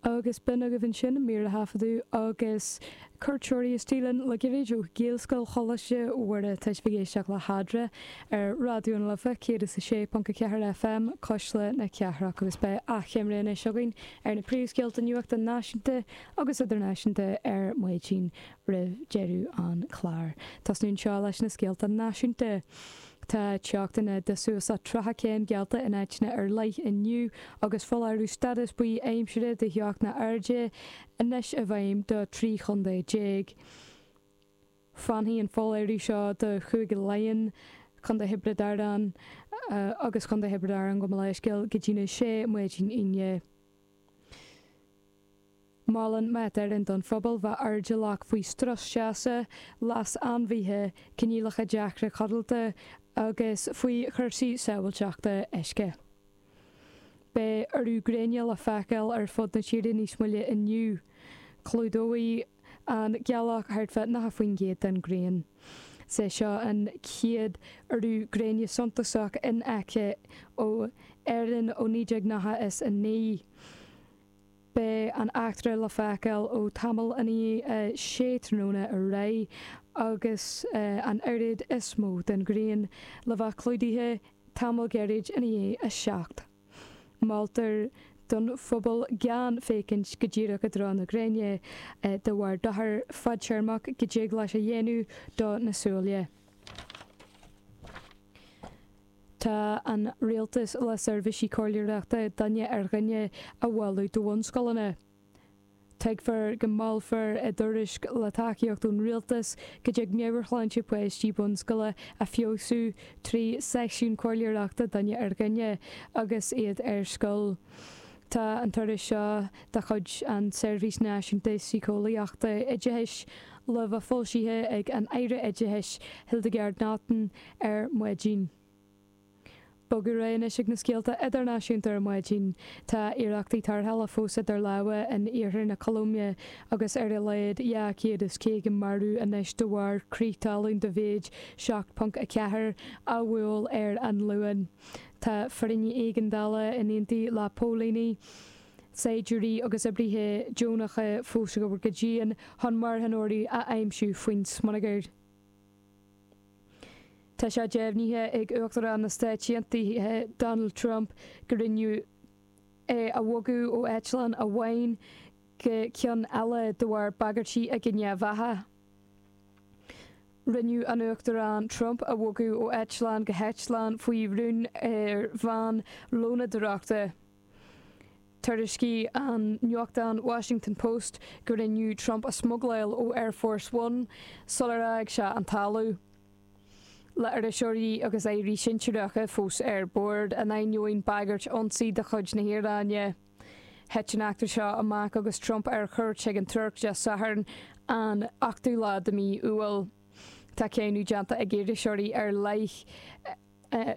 Agus b'in agaibh ansin mír a thaifeadadh agus cuairteoirí istigh linn le gairid ó Ghaelscoil Choláiste Mhuire. Tá sibh ag éisteacht le hEadra ar Raidió na Life 106.4 FM cuisle na cathrach agus beidh achoimre anois againn ar na príomhscéalta nuachta náisiúnta agus idirnáisiúnta ar maidin roimh deireadh an chláir. Tosnú anseo leis na scéalta náisiúnta. Tá teochtanna de suas le 30 céim geallta in áiteanna ar leith inniu agus foláireamh stádas buí aimsire de theochtanna arda anois i bhfeidhm do 13 chontae. Fanfaidh an foláireamh seo do Chúige Laighean, Contae Thiobraid Árann agus Contae Thiobraid Árann gabh mo leithscéal go dtí'n 6 maidin Aoine. Molann Met Éireann don phobal bheith airdeallach faoi strus teasa, leas ainmhithe, coinníollacha deacra codlata agus faoi chúrsaí sábhailteachta uisce. Beidh urú gréine le feiceáil ar fud na tíre níos moille inniu. Clúdóidh an gealach thart fá 90% den ghrian. Is é seo an chéad urú gréine suntasach in aice ó Éirinn ó 1999. Beidh an eachtra le feiceáil ó tamall ina dhiaidh 6 tráthnóna ar aghaidh, agus an oiread is mó den ghrian le bheith clúdaithe tamall gairid ina dhiaidh 7. Moltar don phobal gan féachaint go díreach i dtreo na gréine de bharr dochar fadtéarmach go dtig leis a dhéanamh do na súile. Tá an Rialtas le seirbhísí comhairleoireachta duine ar dhuine a mholadh do bhunscoileanna. Tuigfear go molfar i dtuairisc, le tacaíocht ón Rialtas, go dtig meabhairshláinte páistí bunscoile a feabhsú trí seisiún comhairleoireachta duine ar dhuine agus iad ar scoil. Tá an tuairisc seo de chuid an tSeirbhís Náisiúnta Síceolaíochta Oideachais le bheith foilsithe ag an Aire Oideachais Hildegarde Naughton, ar maidin. Bogadh ar aghaidh anois ag na scéalta idirnáisiúnta ar maidin. Tá iarrachtaí tarrthála fós idir lámha in iarthar na Colóime agus ar a laghad 250 marbh anois de bharr crith talún de mhéid 7.4 a bhuail ar an Luan. Tá foireann éigeandála in éindí le póilíní, saighdiúirí agus oibrithe deonacha fós ag obair go dian chun marthanóirí a aimsiú faoin smionagar. Tá sé deimhnithe ag Uachtarán na Stáit Aontaithe Donald Trump go rinneadh é a bhogadh ó eitleán amháin go ceann eile de bharr bagairtí i gcoinne a bheatha. Rinneadh an Uachtarán Trump a bhogadh ó eitleán go heitleán faoi rún ar veain lónadóireachta. Thuairiscigh an nuachtán Washington Post go rinneadh Trump a smugláil ó Air Force One sular fhág sé an talamh, le hiriseoirí agus airí sinsearacha fós ar bord, in ainneoin bagairt ionsaí de chuid na hIaráine. Thit an eachtra seo amach agus Trump ar chuairt chuig an Tuirc Dé Sathairn an 8ú lá de mhí Iúil. Tá cáineadh déanta ag iriseoirí ar leith ar.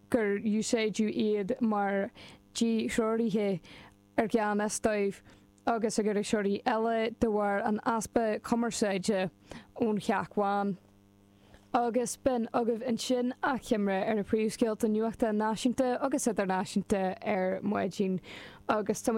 gur úsáideadh iad mar dhíthreoraithe i ngan fhios dóibh agus ag iriseoirí eile de bharr an easpa cumarsáide ón Theach Bhán. Agus b'in agaibh ansin achoimre ar na príomhscéalta nuachta náisiúnta agus idirnáisiúnta ar maidin agus tá muid